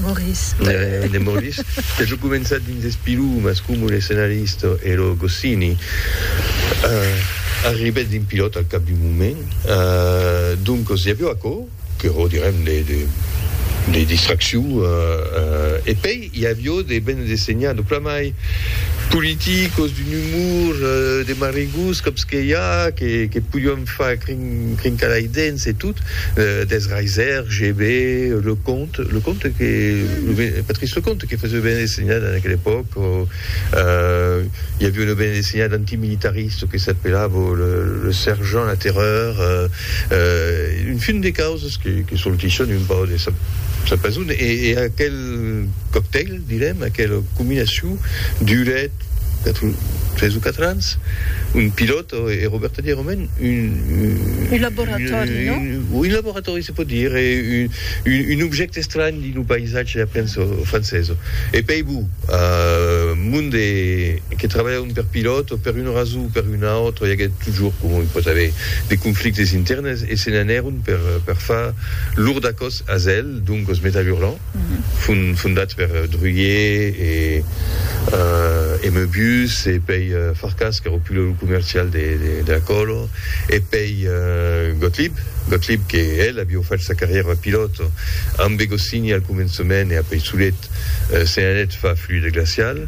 Morís. De Morís, que jo començat dins es pilumas comu l'escenarista e lo Goscini, arribèt dins Pilòt al cap d'un moment. Doncas i avió aquò que ro direm de distraccion e pei i avió de bende de senhar de plan mai politicos, d'un umor, de marigots, còps que i a que podián Fa crincar lei dents e tot, des Reiser, GB, Leconte, Leconte que, Patrice Leconte que faisait banda dessinada en aquela epòca, i aviá una banda dessinada antimilitarista que s'apelava Le Sergent la Terreur, un fin de causas que sortisson un pauc de sa pason e aquel coctèl. Direm aquela combinacion Duret, quatre, tres o quatre ans, un pilòt e Roberta Di Romain, un, Un laboratòri, non? Un, un laboratòri se pòt dire, un, un, un objècte estranh dins lo païsatge aprens o francés. E pei bu, a mon de que trabalhavan per pilòt, per una rason o per una autra, i aguèt totjorn, coma i pòt aver, de conflictes internes e se n'anèron per, per far lor dacòs a Zèl, donc os Métal Hurlant. fondats per Druillet e e Meubius e pei Farkas qu'èra pulèu comercial de de Acolo e pei Gottlieb Gottlieb que el avió fach sa carrièra de pilòt ambe Goscinny al començament e apei solet se n'anèt fa fluide glacial.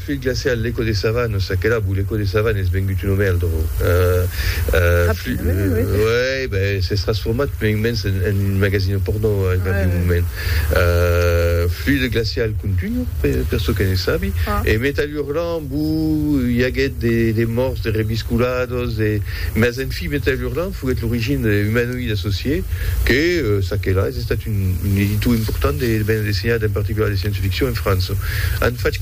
Fluid glacial, l'Eco de Savane, o Sakelabou, l'Eco de Savane es vengut un omèldro. Uèi, ben, s'es transformat mai o mens en un magasino pornò al cap d'un moment. Fluid glacial contunho, per çò que ne sabi, e Metal Hurlant, bu, i aguèt de mòrts, de reviscolados, de, mas en fi, Metal Hurlant foguèt l'origina de Humanoid Associé, que, ça que là, es estat un editor important de banda dessinada, en particular de science-ficcion, en França. An fach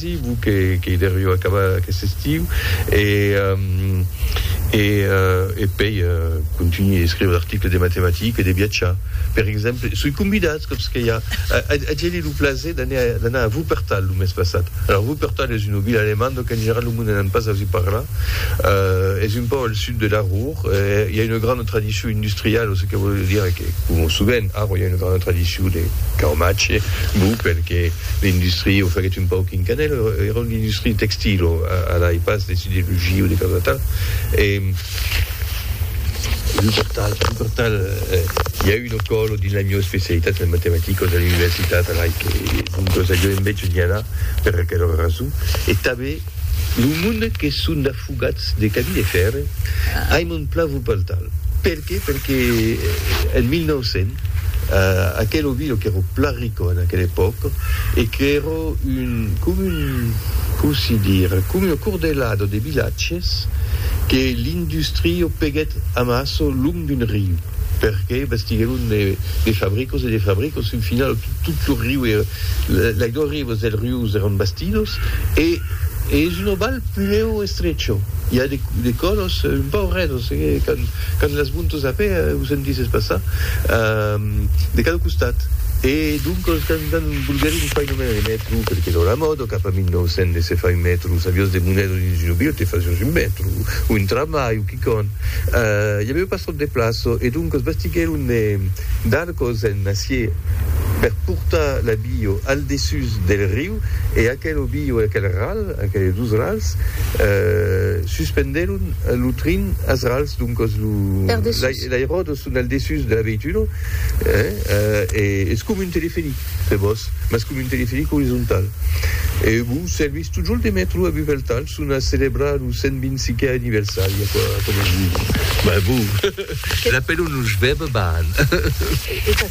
Vos que qu'ei deriu acabar aquest estiu e e e pei contunhir e escriure d'articles de matematiques e de viatjar per exemple soi convidat còps que i a a geni lo plaser d'anar d'anar a Wuppertal lo mes passat alors Wuppertal es una vila alemanda donc en general lo monde n'an pas ausit parlar es un pauc al sud de la Ruhr i a una grana tradicion industriala çò que vòl dire que coma sovent Aarau i a una grana tradicion de caumatge bon perque l'industria o faguèt un pauc en canèl èra una industria textil o ala e pas de siderurgia o de causa tal e un còp tal un còp tal i a una còla dins la mieu especialitat en matematicas a l'universitat ala e que doncas aviá un mètge d'i anar per aquela rason e tanben lo monde que son Fugats de cabi de fèrre, ai mon plan vos paltal. Per qué? Perque en 1900, aquel ovino qu'èro plan rico en aquela epòca e qu'èro un, com un, com si dire, com un acordelado de vilatges que l'industrio peguèt amasso long d'un riu, perque bastiguèron de fabricos e de fabricos, fin finau tot lo riu, la glòria, Aigües del Rius eran bastidos e es un oval puleu estrecho. I a de colors un pauc redos, quand las montos a pè o sentisses passar de cada costat. E doncos quand volguèrin fai nomenar de mètro, per que lora mòda, cap a 1900 se fai mètro, saviós de monedas dins una vila te fasiós un mètro o un tramvai o quicòm, i avèu pas tròp de plaça e doncos bastiguèron de Cosen acié per portar la bio al dessús del riu e aquel bio e aquel ral, aqueles dus rals, suspendèron lo trin als rals, doncas lo l'airòdrom son al dessús de la veituno e es com un teleferic per vos, mas com un teleferic orizontal e vos servís totjorn de mètro a Bufeltal. Son a celebrar lo 125è anniversari aquò aquò. Mas bon, l'apèlon lo Jvèb Baan.